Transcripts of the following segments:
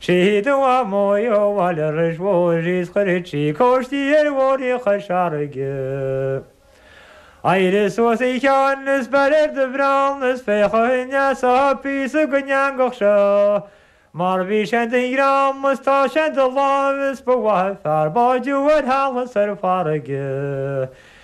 Siad fir Mhaigh Eo a bhain an reic anuas is chuir sí cóistí ar bhóithrí Chois Fharraige. Éirigh suas a Sheáin is beir ar do bhreall is féach an bhfaighfeá píosa den eangach seo, mar bhí sé i do dhream is tá sé i do láimh is ba mhaith an fear báid thú ar thalamh is ar farraige.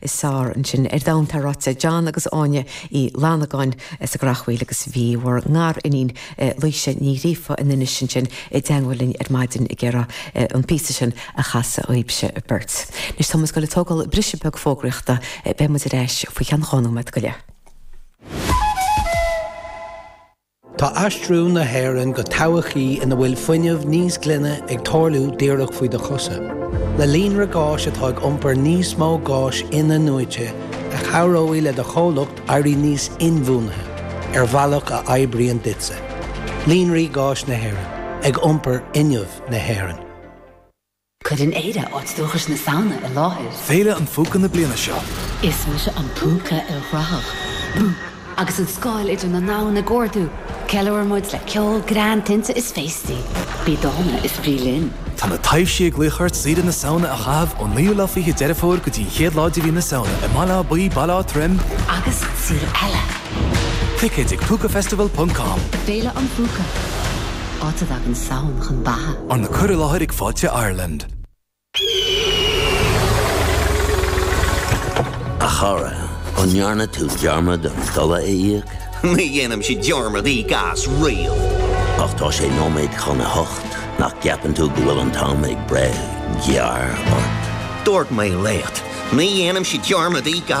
Is fearr ansin ar domhan atá ráite ag John agus Áine Uí Fhlannagáin as an gCreachmhaoil agus bhí bhur ngariníon Laoise Ní Ghríofa in Inis ansin i dteagmhail linn ar maidin ag iarraidh an píosa sin a chasadh dhaoibhse beirt. Anois tá muid ag goil ag tógáil briseadh beag fógraíochta. Beidh muid ar ais faoi cheann dhá nóiméad go leith. Tá aistriú na hÉireann go todhchaí ina bhfuil fuinneamh níos glaine ag tarlú díreach faoi do chosa. Le líonra gáis atá ag iompar níos mó gáis in-athnuaite a chabhróidh le do chomhlacht éirí níos inbhuanaithe ar bhealach a oibríonn duitse. Líonraí Gáis Éireann, ag iompar fhuinneamh na hÉireann. Cuireann Éire áit dúchais na Samhna i láthair. Féile an Phúca na bliana seo. Is mise an Púca ilchruthach, Boop! Agus an scáil idir na domhain ag ardú, ceiliúrann muid le ceol, greann, tinte is féastaí. Bí dána is bí linn! Tá na taibhsí ag glaoch ort saoire na Samhna a chaitheamh ón 9ú lá 20 de Dheireadh Fómhair go dtí an chéad lá de mhí na Samhna i mBaile Átha Buí, Baile Átha Troim, agus sa saol eile! Ticéid ag Púcafestival.com. Féile an Phúca. Áit a dtagann Samhain chun beatha. Arna cur i láthair ag Fáilte Ireland. A chara, an ndearna tú dearmad an dola a íoc? Ní dhéanaimse dearmad íoc as riamh. Ach tá sé nóiméad chun a hocht, nach gceapann tú go bhfuil an t-am ag breith gearr ort? Dúirt mé leat, ní dhéanaimse dearmad íoc as.